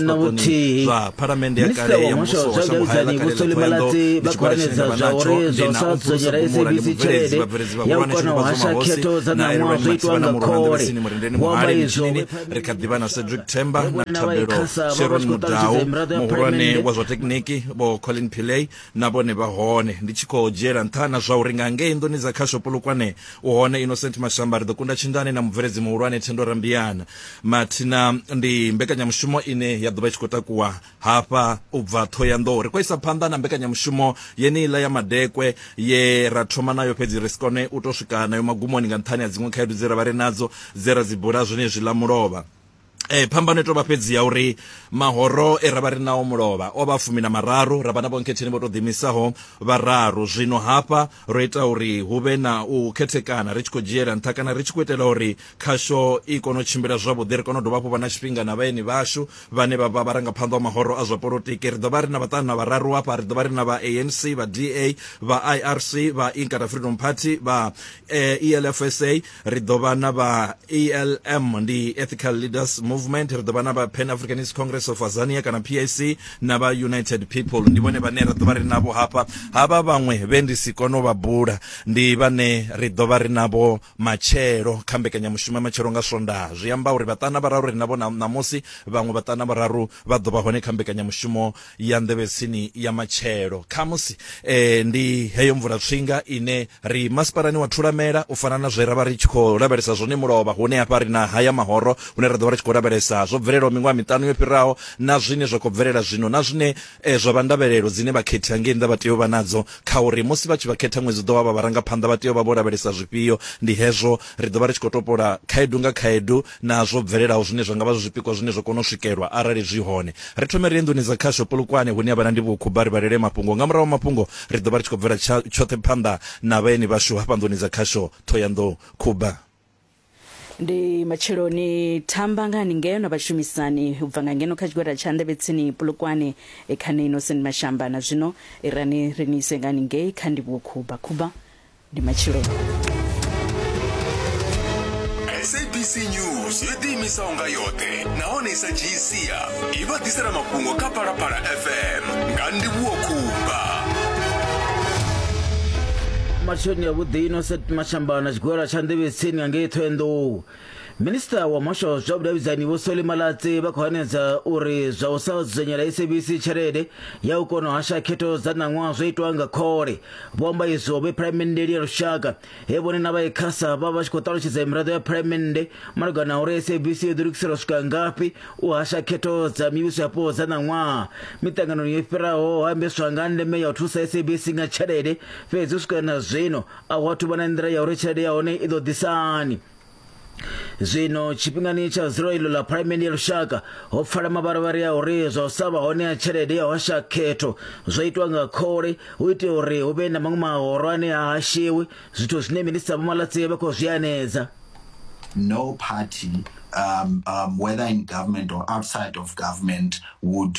na vhuthihi minista wa muhasho wa zwa vhudavhidzani vho soli malatsi vha khou hanedza zwa uri zwa u sa dzudzanyela sabc tshelede ya u kona u hasha khetho dza ṋaṅwaha zwo itwa nga khole vho amba izwo ri kha ḓivha na cedric temba na thabelo sharon mudau muhulwane wa zwa tekniki vho colin pillay na vhone vha hone ndi tshi khou dzhiela nṱha na zwa uri nga ngei nḓuni dza khasho polokwane u hone innocent mashamba ri ḓo kunda tshindane na mubveledzi muhulwane thendo rambiana mathina ndi mbekanyamushumo ine ya ḓovha i tshi khou takuwa hafha u bva ṱhohoyanḓou ri khou isa phanḓa na mbekanyamushumo yeneiḽa ya madekwe ye ra thoma nayo fhedzi ri si kone u tou swika nayo magumoni nga nṱhani ha dziṅwe khaedu dze ra vha ri nadzo dze ra dzi bula zwenezwi ḽa mulovha Eh phambano i tovha fhedzi ya uri mahoro e ravha ri nao mulovha o vha fumi na mararu ravha na vhonkhetheni vho to ḓimisaho vhararu zwino hafha ro ita uri hu vhe na u khethekana ri tshi khou dzhiela nṱha kana ri tshi khou itela uri khasho i kone u tshimbila zwavhuḓi ri kone u dovha hafhu vha na tshifhinga na vhaeni vhashu vhane vha vha vharangaphanḓa wa mahoro a zwa polotiki ri ḓo vha ri na vhaṱanu na vhararu hafha ri ḓo vha ri na vha anc vha da vha irc vha inkata freedom party vha elfsa eh, e ri ḓo vha na vha elm ndi ethical leaders movement ri ḓo vha na vha pan africanist congress of azania kana pac na vha united people ndi vhone vhane ra ḓo vha ri navho hafha havha vhaṅwe vhe ndi si kone u vha bula ndi vhane ri ḓo vha ri navho Matshelo, kha mbekanyamushumo ya Matshelo nga Swondaha, zwi amba uri vhaṱana vhararu ri navho ṋamusi. Vhaṅwe vhaṱana vhararu vha ḓo vha hone kha mbekanyamushumo ya Nḓevhetsini ya Matshelo. Khamusi ndi heyo mvulatswinga ine ri masipalani wa Thulamela, u fana na zwe ra vha ri tshi khou lavhelesa zwone mulovha. Hune hafha ri na haya mahoro hune ra ḓo vha ri tshi khou lavhelesa zwo bvelelaho miṅwaha miṱanu yo fhiraho na zwine zwa khou bvelela zwino na zwine E, zwa vha ndavhelelo dzine vhakhethi hangei nnḓa vha tea u vha nadzo kha uri musi vha tshi vha khetha ṅwedzi u ḓo wa vha vharangaphanḓa vha tea u vha vho lavhelesa zwifhio. Ndi hezwo ri ḓo vha ri tshi khou topola khaedu nga khaedu na zwo bvelelaho zwine zwa nga vha zwi zwipikwa zwine zwa kona u swikelwa arali zwi hone. Ri thome ri ye nḓuni dza khasho Polokwane hune ha vha na ndivhokhubva ri vhalele mafhungo. Nga murahu ha mafhungo ri ḓo vha ri tshi khou bvela tsha, tshoṱhe phanḓa na vhaeni vhashu hafha nḓuni dza khasho Ṱhohoyanḓou khubva. ndi matsheloni thamba nga ni ngeno vhashumisani u bva nga ngeno kha tshigwada tsha ndevhetsini pulukwane e kha ni innocent mashamba na zwino irani ri ni ise nga ni ngei kha ndivhuwo khuba khuba ndi matsheloni sabc news yo ḓiimisaho nga yoṱhe nahone i sa dzhii sia i vha ḓisela mafhungo kha phalaphala fm nga ndivhuwo khumba matsheloni ya vhuḓi ino set mashamba na tshigwela tsha nḓevhetsini nga ngei thoenḓou minista wa muhasho wa zwa vhudavhidzani vho soli malatsi vha khou hanedza uri zwa u sa dzudzanyela sabc tshelede ya u kona u hasha khetho dza ṋaṅwaha zwo itwa nga khole vho amba izwo vhe phalamenteli ya lushaka he vhone na vha ecasa vha vha tshi khou ṱalutshedza miraḓo ya phalamennde malugana uri sabc yo ḓilugiselwa swika ngafhi u hasha khetho dza mivhuso yapo dza ṋaṅwaha miṱanganoni yo fhiraho ho ambeswa nga ndeme ya u thusa sabc nga tshelede fhedzi u swika na zwino a hu athu vha na nḓila ya uri tshelede ya hone i ḓo ḓisani zwino tshifhingani tsha ziro iḽo ḽa phalamende ya lushaka ho pfala mavharivhari a uri zwa u sa vha hone ha tshelede ya hosha khetho zwo itwa nga khole hu itela uri hu vhe na maṅwe mahoro ane ha hashiwi zwithu zwine minista vho malatsi vha khou zwi anedza no party um, um, whether in government or outside of government would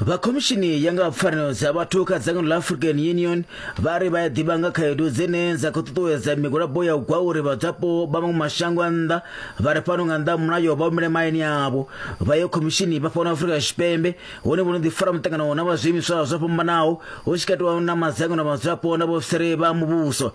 vha khomishini ya nga pfanelo dza vhathu kha dzangano ḽa african union vha ri vha ya ḓivha nga khaedu dzine dza khou ṱuṱuwedza migwalabo ya u gwa uri vhadzwapo vha maṅwe mashango a nnḓa vha ri fhano nga nnḓa ha mulayo vha humele mahayani avho vha ye khomishini vha fhano afrika tshipembe hone vho no ḓifara muṱangano na vha zwiimiswa zwo fhambanaho hu tshi katiwa na madzangano a vhadzwapo na vhaofisiri vha muvhuso